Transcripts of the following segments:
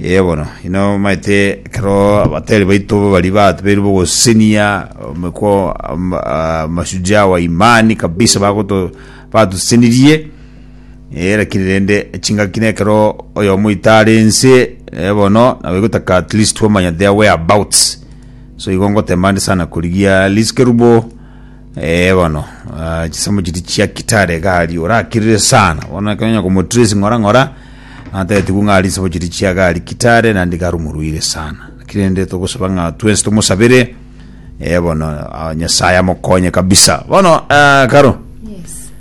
Ee bono, inamaete ekero abatari baito baria batubeirwe bogosesenia omekwa ama- ah, mashujaa wa imani kabisa bagoto batusesenirie Eh, lakini rende chingaki na ekero oyomo itare ense eh, bono nabo egotaka at least twamanya their whereabouts so igo ngotemande sana korigia Liz Kerubo Eh, bono ah, chisemo chiri chia kitare gari orakirire sana bono ekenya komotresi ng'ora ng'ora natetigwe ng'ari chisemo chiri chia gari kitare nandi garumuruire sana lakini ende togosaba ng'a twensi tomosabire eh, bono ah, nyasaye amokonye kabisa bono ah, karo Yes.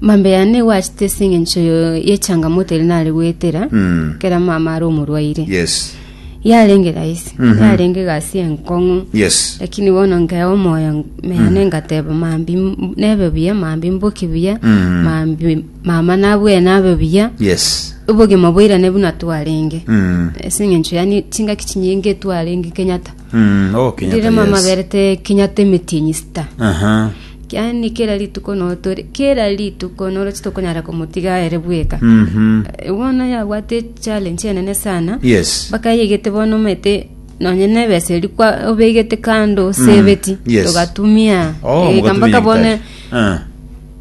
Mambia yane nigo achete ase eng'encho yo- y'echangamoto eria nare goetera Mm. ekero mama are omorwaire. Yes. Yarenge rahisi, Mhm. yarenge egasi enkong'u. Yes. Lakini bono nkeba omoyo mene ngateba mambi m- nebe buya, mambi mboki buya, Mm. mambi mama nabue nabe buya. Yes. Obogima boirane buna twarenge. Mm. Ase eng'encho yani chingaki chinyinge twarenge Kenyatta. Mm. Oh, Kenyatta, Rire mama yes. berete Kenyatta emetienyi sita. Aha. Yaani kera rituko notore, kera rituko noroche tokonyara komotiga ere bweka. Bono yabwate challenge enene sana. Yes. Mpaka yegete bono omanyete nonye nebesa eri kwa obegete kando sebeti. yes. Togatumia. Oh, Ega mogatumia mpaka bono nyagetari. Ah.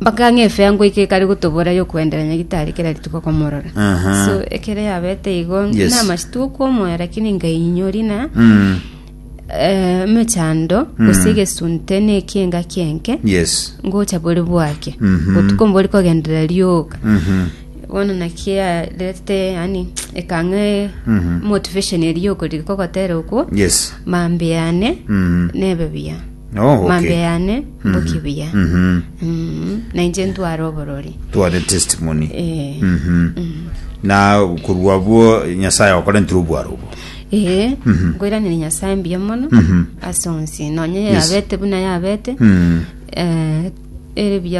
mpaka ng'a efe yango ike ekare gotobora yokoendera nyagitari kera rituko komorora Aha. so ekere yabete igo Yes. namachia tokomoera lakini ngainyori na Mm. emechando gose egesunte na ekienga ki'enke Yes. ngocha bore bwake botuko mbori kogenderera rioka bono naki yarete yani ekang'e motivation eria yokoriri kogotera okwo Yes. mambe yane Mhm. nebe buya Oh, okay. mambe yane mboki buya Mhm. Mm, na inche ntware oborori tware testimony Eh, Mhm. na korwa bwo nyasaye agokorentire obwaro obo Ee, Mhm. nkoiranire Nyasae mbuya mono Mhm. ase onsi, nonya Yes. yabete buna yabete, Mm. eh, ere buya